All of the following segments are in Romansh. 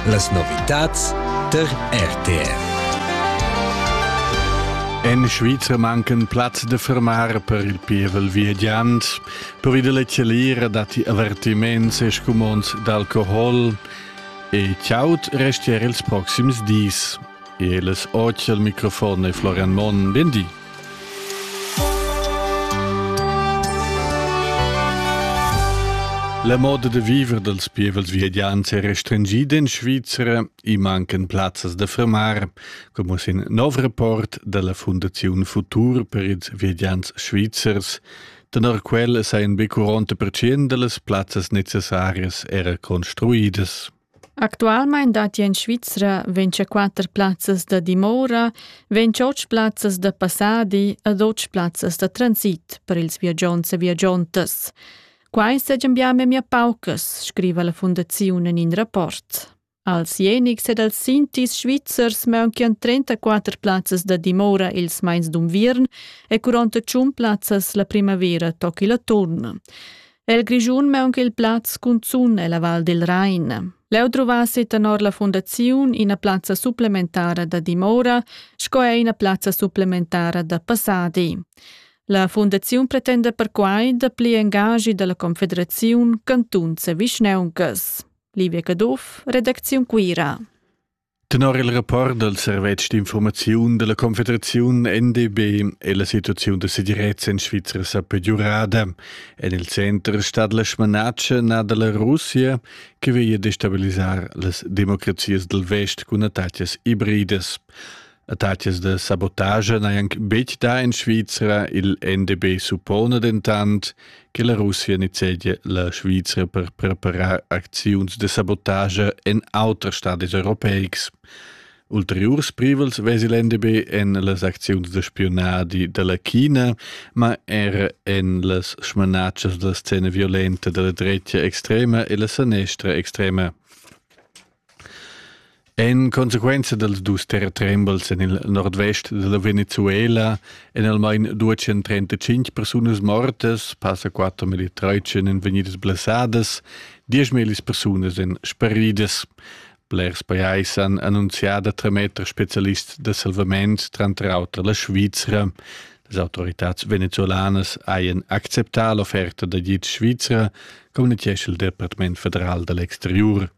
Las novitads der RTR. En Schweizer mancan Platz de fermar per il pievel viagiant. Per il leceliera datti avertiments e scumonds d'alcohol e ciaut restier ils proxims dis. Els oggi al microfon è Florian Monn. Ben di. La moda da viver dals pievels viadians è restringida en Svizra. I mancan plazzas da fermar, come sin nov rapport della Fundazione Futur per ils viadians svizzers. Tenor quel sajan be 40% da las plazzas necessarias era construidas. Actualmein datti en Svizra vintschaquatter plazzas da dimora, ventschotg plazzas da passadi ed otg plazzas da transit per ils viagiants e viagiantas. Quai seigien bia memia paucas, scriva la fundaziun en in rapport. Als Jenics ed als Sintis svizzers maunchian 34 plazzas da dimora ils mais d'unviern e 48 plazzas la primavera toc il atturn. El Grischun maun il plaz cunzun ella Val del Rain. Leu druvassi tenor la fundaziun ina plazza supplementara da dimora sco er ina plazza supplementara da passadi. La fundaziun pretenda perquai da pli engagi dalla Confederaziun cantuns e vischneuncas. Livia Caduff, Redacziun Cuira. Tenor il rapport dal servetsch d'infurmaziun da la Confederaziun NDB è la situaziun da segirezza en Svizra sa pegiurada. En il center stat la smanatscha nà da la Russia che veglia destabilisar las democrazias dal vest cun attacas ibridas. Attacas da sabotagia n'hajan betg dà en Svizra, il NDB suppona dentant che la Russia nizzegia la Svizra per preparar acziuns da sabotagia en auters stadis europeics. Ulteriurs privels vesi l'NDB en las acziuns da spiunadi da la China, ma era en las smanatschas da la scena violenta da la dretga extrema e la sanestra extrema. En consequenza dals dus terratrembels en il nordvest da la Venezuela èn almain 235 persunas mortas, passa quatter milli traitschen èn vegnidas blessadas, dieschmillis persunas èn sparidas. Blers pajais han annunzià da trametter spezialists da salvament, tranter auter la Svizra. Las autoritads venezuelanas hajan acceptà l'offerta da guid svizra, communitgescha il Departament federal da l'exteriur.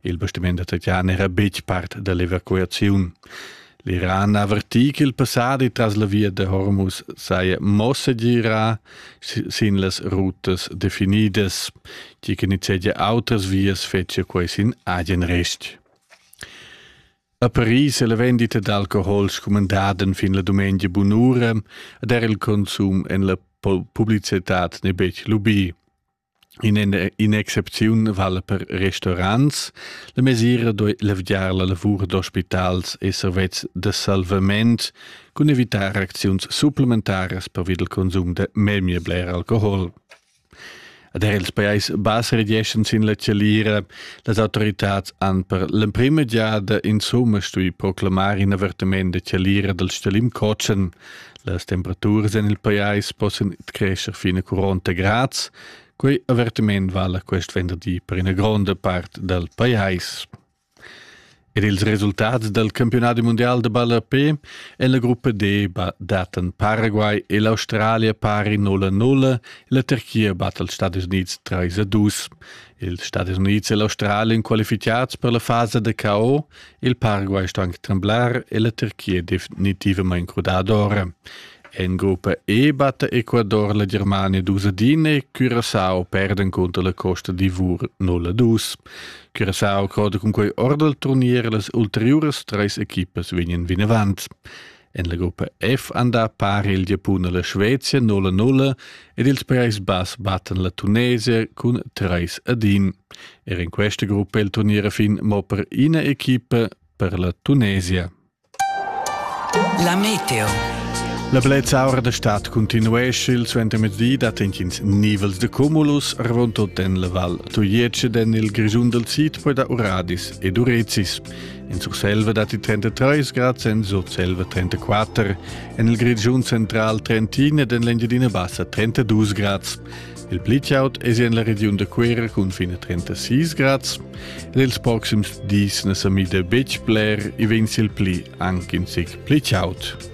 Il bastiment da Tatian era betg part da l'evacuaziun. L'Iran avertì ch'il passadi tras la via da Hormuz saja mo segirà sin las rutas definidas, tgi che nizzegia autras vias fetschia quai sin agen rest. A Paris è la vendita d'alcohol scumandada fin la dumengia bunura ed era il consum en la publicitad n'è betg lubì. In excepziun vala per restaurants. La mesira doi levgiar la lavur d'ospitals e servets da salvament cun evitar acziuns supplementaras per il consum de memia bler alcohol. Ad er ils pajais bas regeschen sin la chalira, las autoritads han per l'emprima giada insomma stui proclamar in avertiment de chalira dal Stalim Cocen, Las temperaturas en il pajais possan crescer fin a 40 grads. Quei avertiment vala quest venderdi per ina gronda part dal pajais. Ed ils resultats dal campionat mondial de balla P en la gruppa D datan Paraguay e l'Australia pari 0-0, la Turchia batta els Stati Units 3-2. Ils Stadis Unids e l'Australien qualificads per la fasa da KO, il Paraguay sto anche tremblar e la Turchia definitivamente crudada ora. En gruppa E batte Ecuador la Germania 2 e Curaçao perden contro la Costa d'Ivor 0-2. Curaçao croda con quei ora del turnier las ulteriores tres equipes vegnan vinavant. En la gruppa F han dà pari il Giapun e la Svezia 0-0 ed ils Prais Bass battan la Tunesia cun 3 ad 1. Er in questa gruppa è il turnier fin mo per ina equipa per la Tunesia. La meteo. La blezzaura da stad continuesce, il suentermezdi dat intgins nivels de cumulus, ravontut en la Val Tuiece, den il Grischun del Sid, poi da Uradis ed Urezis. In Surselva datti 33 grads, en Surselva 34, en il Grischun central 31 ed en l'Engiadina Bassa 32 grads. Il pli chaud è en la regiun da Cuera cun fin a 36 grads. Ed ils proxims dis na sa mida betg bler, i vegn il pli anche in zic pli chaud.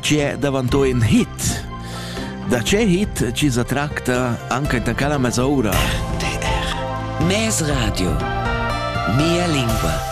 che davanto in hit. Da che hit ci sa tracta anche da Cala Mesoura. DR. Mes Radio. Mia lingua.